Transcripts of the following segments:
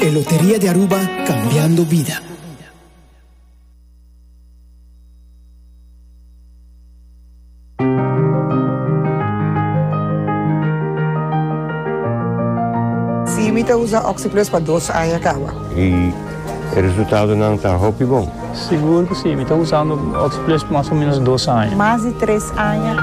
E Loteria di Aruba, Cambiando vida. Sí, mi ta usa Oxyplus pa dos aña kawa. Y e resultadonan ta hopi bon. Sigur cu sí, mi ta usando Oxyplus pa mas o menos dos aña. Mas di tres aña.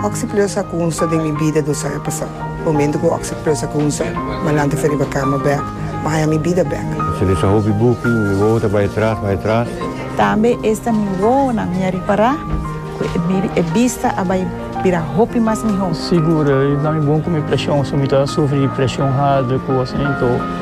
Oxyplus a cunsta den mi bida dos aña pasá. Momento cu ocse plus a cunsa, Malante fe riba cama bek, Maya mi bida bek. Se lesa hopi buki, mi wowo ta bay atras, bay atras. Tambe esta mi wowonan mi a ripara cu e bista a bay bira hopi mas miho. Sigur, e dami bon cu mi presion, si mi ta sufri di presion harder cu asina, enton.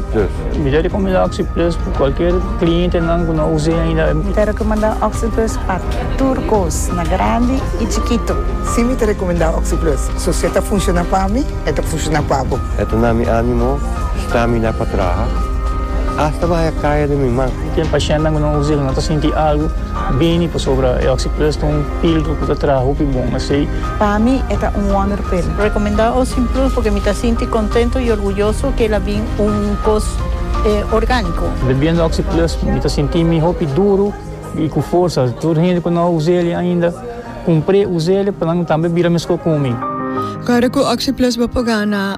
Plus. Mi ta rekomendá Oxi Plus pa kualker klientenan ku no a us'é ainda. Mi ta rekomendá Oxi Plus pa tur kos, na grandi i chikitu. Sí, mi ta rekomendá Oxi Plus. So si e ta funshoná pa mi, e ta funshoná pa bo. E ta na mi ánimo stamina pa traha asta bahaya kaya den mi man. Ken pashientnan ku no a us'é ku no ta sinti algu bini pasobra e Oxi Plus ta un. Ildo ku ta traha hopi bon asei. Pa mi e ta un wonderpil. Rekomendá Ocean Plus porque mi ta sinti kontento i orguyoso ke el a bin un kos orgániko. Bebiendo Oxi Plus mi ta sinti mi hopi duru i ku forsa. Tur hende ku no a usa el ainda kumpr'é usa el pa nan tambe bira meskó ku mi. Kada ku Oxi Plus bo por gana.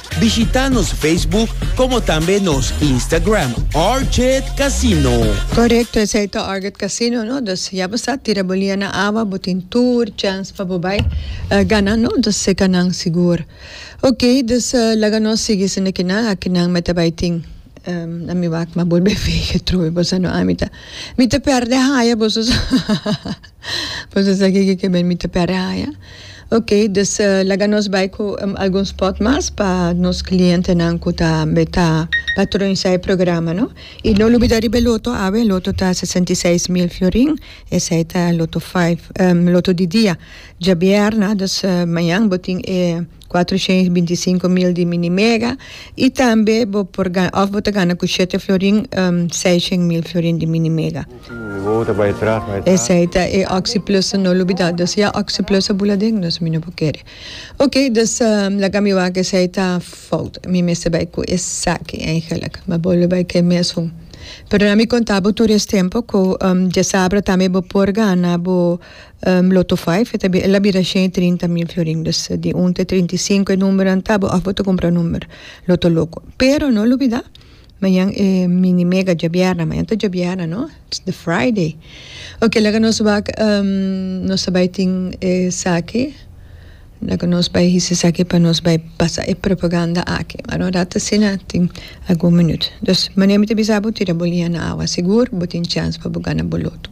Bishita nos Facebook como tambe nos Instagram Orchid Casino. Correcto, esey ta Orchid Casino no, dus ya bo sa tira bo lia na awa bo tin tur chance pa bo bay gana no, dus seca nan sigur. Ok, dus laga nos sigui sinda ki nan aki nan me ta bay tin, na mi wak ma bolbe vege troe bo sa no ami ta mi ta perde haya boso sa boso sa kiko ke ben mi ta perde haya. Ok, dus laga nos bai ku algun spot mas pa nos klientenan ku ta meta patronisá e programa, no. I no lubidá riba e loto, awe e loto ta sesenta i seis mil florin, esei ta loto five, loto di dia, djabièrna, dus mañan bo tin e. Kuater shen i binti sinku mil di minimega i tambe bo por gana òf bo ta gana ku shete florin seis shen mil florin di minimega. Esei ta e Oxiplusa no lubidá. Dus ya Oxiplusa bula den nos mi no por kere. Ok dus laga mi wak esei ta fout mi mester bai ku esaki eigenlik ma bo lo bai ku e mes un. Pero nan mi konta bo tur es tempu ku diasabra tambe bo por gana bo Lo to five, eta bi, el a bira shen i trinta mil florin. Dus di un te trinta i sinku e numbernan ta bo, òf bo ta kumpra number loto loko. Pero no lubidá, mañan e mini mega djabièrna, mañan ta djabièrna no, it's the Friday. Oke laga nos wak nos a bai tin esaki, laga nos bai hisi esaki pa nos bai pasa e propaganda aki. Aran un rat asina, tin algun minuut. Dus, mane mi ta bisa bo, tira bo liña na awa sigur, bo tin chèns pa bo gana bo loto.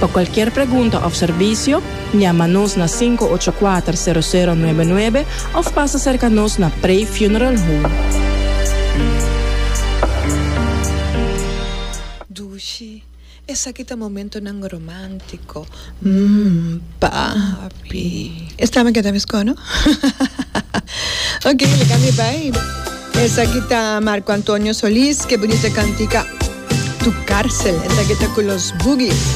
Pa cualkier pregunta of servicio, llama nos na sinku ocho kuater sero sero nuebe nuebe of pasa cerca nos na Prey Funeral Home. Dushi, Esaki ta momentonan romantico, mm, papi. E sta me keda mi sco, no? Ok, lika mi bai. Esaki ta Marco Antonio Solis, Ke Bunita Cantica, Tu Carcel. Esaki ta cu Los Boogies.